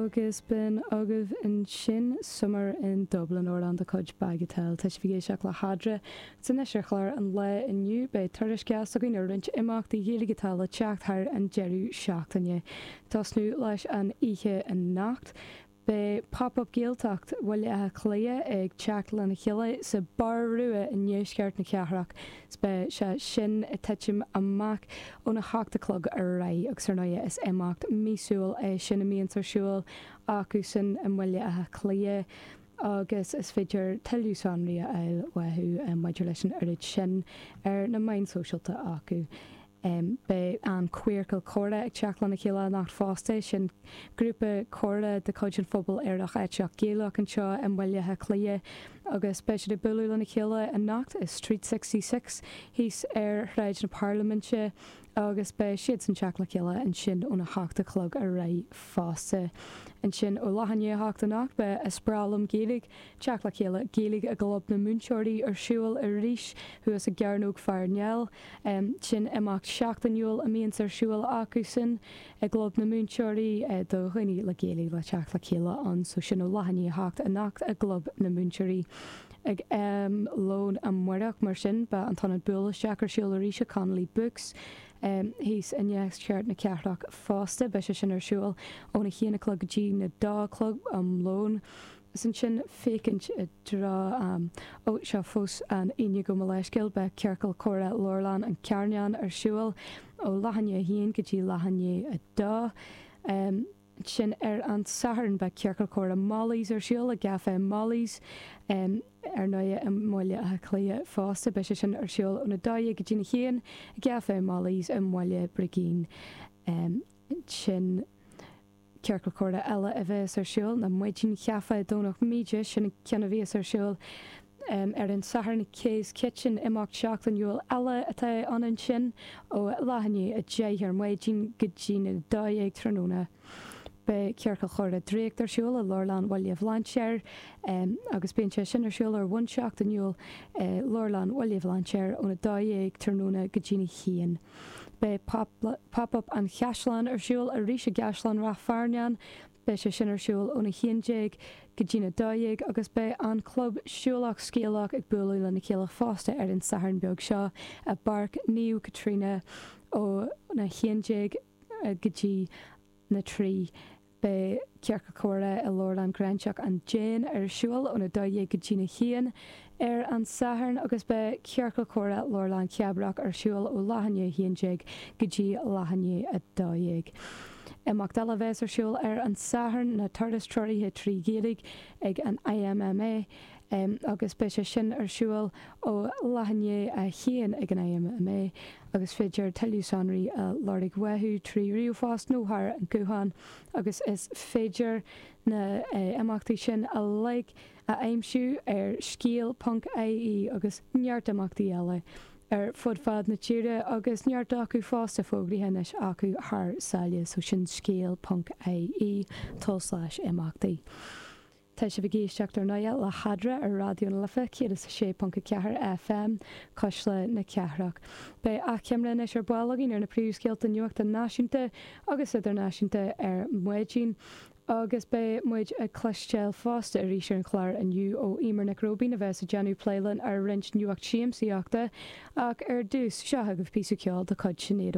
Agus b'in agaibh ansin Summer in Dublin amhrán de chuid Bagatelle. Tá sibh ag éisteacht le Fada is Fairsing anois ar chlár an lae inniu. Beidh tuairisc againn ar roinnt imeachtaí Gaeilge atá le teacht thar an deireadh seachtaine. Tosnú leis an oíche anocht beidh Pop Up Gaeltacht Bhaile Átha Cliath ag teacht lena chéile sa Barr Rua i ndeisceart na cathrach. 'S beidh sé sin a' tuitim amach ón a hocht a chlog ar aghaidh agus ar ndóigh is imeacht míosúil é sin a mbíonns ar siúl acu san i mBaile Átha Cliath agus is féidir tuilleadh sonraí a fháil uathu maidir leis an oiread sin ar na meáin shóisialta acu. Beidh an Queercal Comhrá ag teacht lena chéile anocht fosta. Sin grúpa comhrá de chuid an phobail Aerach Aiteach Gaelach anseo i mBaile Átha Cliath agus beidh siad ag bualadh lena chéile anocht i Street Sixty Six thíos ar Shráid na Parlaiminte agus beidh siadsan teacht le chéile ansin óna hocht a chlog ar aghaidh fosta. Ansin ó leath i ndiaidh a hocht anocht beidh Is Breá Liom Gaeilge Teacht le chéile Gaeilge i gClub na Múinteoirí ar siúl arís thuas i gCearnóg Pharnell. Sin imeacht seachtainiúil a mbíonns ar siúl acusan i gClub na Múinteoirí do dhaoine le Gaeilge le teacht le chéile ann. So sin ó leath i ndiaidh 8 anocht i gClub na Múinteoirí. Ag am lóin amáireach mar sin beidh an t-ionad buail isteach ar siúl arís i Connolly Books thíos i ndeisceart na cathrach fosta. Beidh sé sin ar siúl óna haon a chlog go dtí na dó a chlog am lóin. Is ansin féachaint i dtreo. Ó, seo fós an Aoine agam, mo leithscéal. Beidh Ciorcal Comhrá Leabharlann an Charnáin ar siúl ó leath i ndiaidh a haon go dtí leath i ndiaidh a dó. Ansin ar an Satharn beidh Ciorcal Comhrá Mollies ar siúl i gCafé Mollies, ar ndóigh, i mBaile Átha Cliath fosta. Beidh sé sin ar siúl ón a dó dhéag go dtína haon i gCafé Mollies i mBaile Brigín ansin. Ciorcal Comhrá eile a bheas ar siúl ar maidin i gcaifé i Domhnach Míde, sin an ceann a bhíos ar siúl ar an Satharn i Kay's Kitchen, imeacht seachtainiúil eile atá ann ansin ó leath i ndiaidh a deich ar maidin go dtí na dá dhéag tráthnóna. Beidh Ciorcal Comhrá Draíocht ar siúl i Leabharlann Bhaile Bhlainséir agus bíonn sé sin ar siúl ar bhonn seachtainiúil i Leabharlann Bhaile Bhlainséir ó na dá dhéag tráthnóna go dtí na h-aon. Beidh Pop Up an Chaisleáin ar siúl arís i gCaisleán Ráth Fearnáin. Beidh sé sin ar siúl ón 11 go dtí'n 12 agus beidh an club Siúlach Scéalach ag bualadh lena chéile fosta ar an Satharn beag seo i bPáirc Naomh Caitríona ón 11 go dtí na 3. Beidh Ciorcal Comhrá i Leabharlann Ghráinseach an Déin ar siúl ón 12 go dtí'n 1 ar an Satharn agus beidh Ciorcal Comhrá Leabharlann Chabrach ar siúl ó leath i ndiaidh 11 go dtí leath i ndiaidh 12. Imeacht eile a bhéas ar siúl ar an Satharn ná Turas Treoraithe trí Ghaeilge ag an IMMA. Em agus beidh sé sin ar siúl ó leath i ndiaidh a haon ag an IMMA agus is féidir tuilleadh sonraí a lorg uathu trí ríomhphost nó thar an guthán agus is féidir na eh imeachtaí sin uilig a aimsiú ar scéal ponc IE agus neart imeachtaí eile ar fud fad na tíre agus neart acu fosta fógraithe anois acu thar sáile so sin scéal ponc IE, tulslais imeachtaí. Tá sibh ag éisteacht ar ndóigh le hEadra ar Raidió na Life 106.4 FM, Cuisle na Cathrach. Beidh achoimre anois ar ball againn ar na príomhscéalta nuachta náisiúnta agus idirnáisiúnta ar maidin agus beidh muid ag cloisteáil fosta arís ar an chlár inniu ó Eimear Nic Róibín a bheas ag déanamh plé linn ar roinnt nuacht siamsaíochta ach ar dtús, seo agaibh píosa ceoil de chuid Sinéad